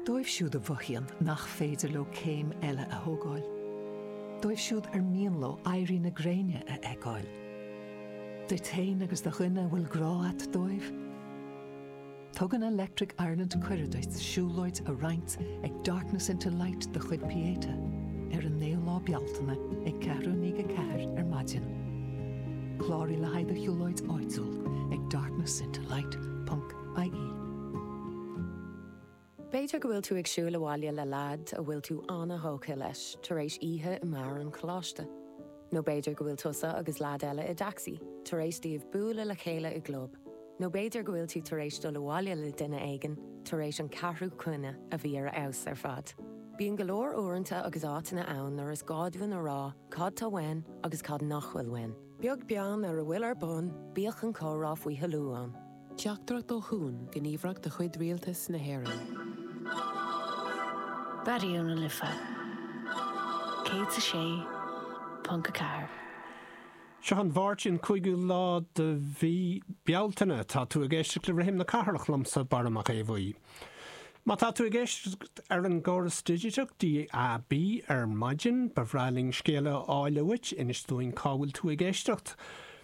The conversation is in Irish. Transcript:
Dóibh siúd a mhothaíonn nach féidir leo céim eile a thógáil, dóibh siúd ar mian leo éirí na gréine a fheiceáil, duit féin agus do dhuine a bhfuil grá a't dóibh, Tugann Electric Ireland cuireadh duit siúlóid a roinnt ag Darkness into Light de chuid Pieta ar an 9ú lá Bealtaine ag ceathrú i ndiaidh a ceathair ar maidin. Cláraigh le haghaidh do shiúlóid áitiúil ag darknessintolight.ie. B'fhéidir go bhfuil tú ag siúl abhaile le leaid a bhfuil tú an-thógtha leis tar éis oíche i mbeár an choláiste. Nó b'fhéidir go bhfuil tusa agus leaid eile i dtaxi, tar éis daoibh bualadh le chéile i gclub. Nó b'fhéidir go bhfuil tú tar éis dul abhaile le duine éigin tar éis an ceathrú coinne a bhí ar a fheabhas ar fad. Bíonn go leor uaireanta agus áiteanna ann nuair is gá dúinn a rá cad tá uainn agus cad nach bhfuil uainn. Beag beann ar a bhfuil ar bun, bíodh an comhrá faoi thoiliú ann. Teachtaireacht ó Chuan, gníomhaireacht de chuid Rialtas na hÉireann. Seo an Mháirt an 5ú lá de mhí Bealtaine. Tá tú ag éisteacht le Rithim na Cathrach liomsa, Barra Mac Aodh Bhuí. Má tá tú ag éisteacht ar an gcóras digiteach DAB ar maidin, ba bhreá linn scéala a fháil uait, inis dúinn cá bhfuil tú ag éisteacht.